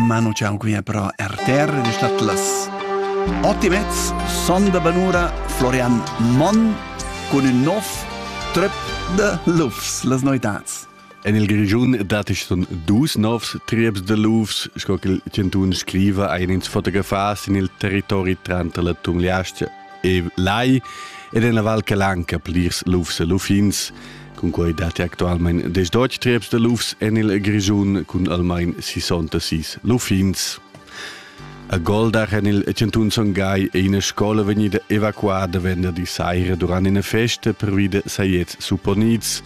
Ma non c'è ancora però RTR ed è stato las otto e mezza sonda banura Florian Monn con il nov trip de Lufs, las noitats. En il Grigiun datich sun dus novs trips de Lufs, sco che il Centun scriva ein ins fotografas in il territori tranter la Tumliastia e lai ed en la Val Calanca plirs lufs e luffins cun quei datti actualmein des deutsch trieps de lufs en il Grischun cun almain 66 luffins. A Goldach en il Cantun Son Gai è ina scola vegnida evacuada venderdi saira durant una festa per vide saiets supponits.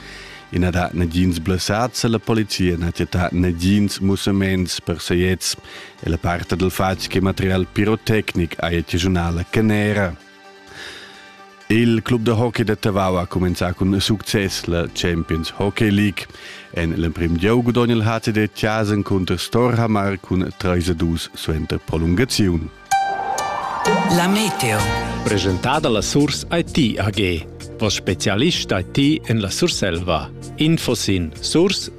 Ina da nagins blessats alla polizia na tetta nagins musaments per saiets e la parte del fatg che material pirotecnic ha il regionale Canera. Il club da hockey de Tavau ha comenzato con succes la Champions Hockey League. En l'emprim gieu gudogna il HCD Tjasen contro Storhamar cun 3-2 suenter prolungazione. La Meteo. Presentada la Source IT AG. Vos specialist IT en la Surselva. Info sin source-it.ch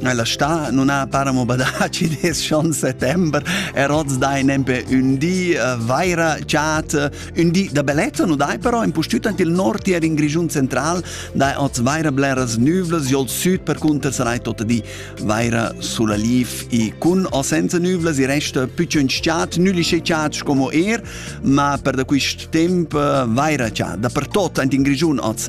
Ella sta non ha paramo badaci des schon settember er oz dai nempe un di uh, vaira chat un di da bellezza no dai però in pustüt ant il nord hier in Grigiun central dai oz vaira bleras nüvles jol süd per cunter sarai tot di vaira sulla lief i cun o senza nüvles i resta pücciun chat nülisce chat como er ma per da quist temp uh, vaira chat da per tot ant in Grigiun oz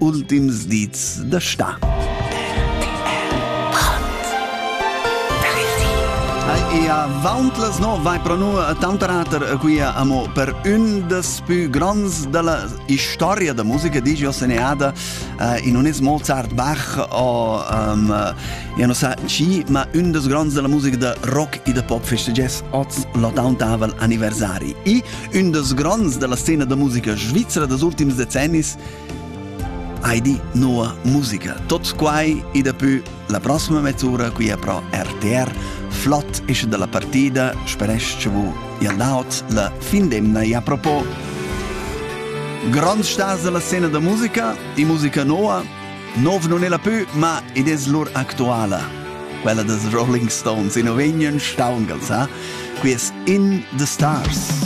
ultims dits da sta. Ia vauntas no vai pro nu tanterater quia amo per ün des pü grands della historia da musica digio seneada uh, in un es Mozart Bach o um, ja no sa chi ma ün des grands della musica da rock e da pop festegges oz l'ottantavol anniversari i ün des grands della scena da musica svizzera des ultims decennis Heidi nova musica. Tots quai e daplü la prossima mezz'ura qui a Pro RTR. Flott esce dalla partida, speresch vu Iandaoz la fin d'emna e a propos Grond staz dalla scena da musica e musica nova Nov non è la più, ma ed es lur actuala. Quella des Rolling Stones in ovegnan staungal sa, qui es In the Stars.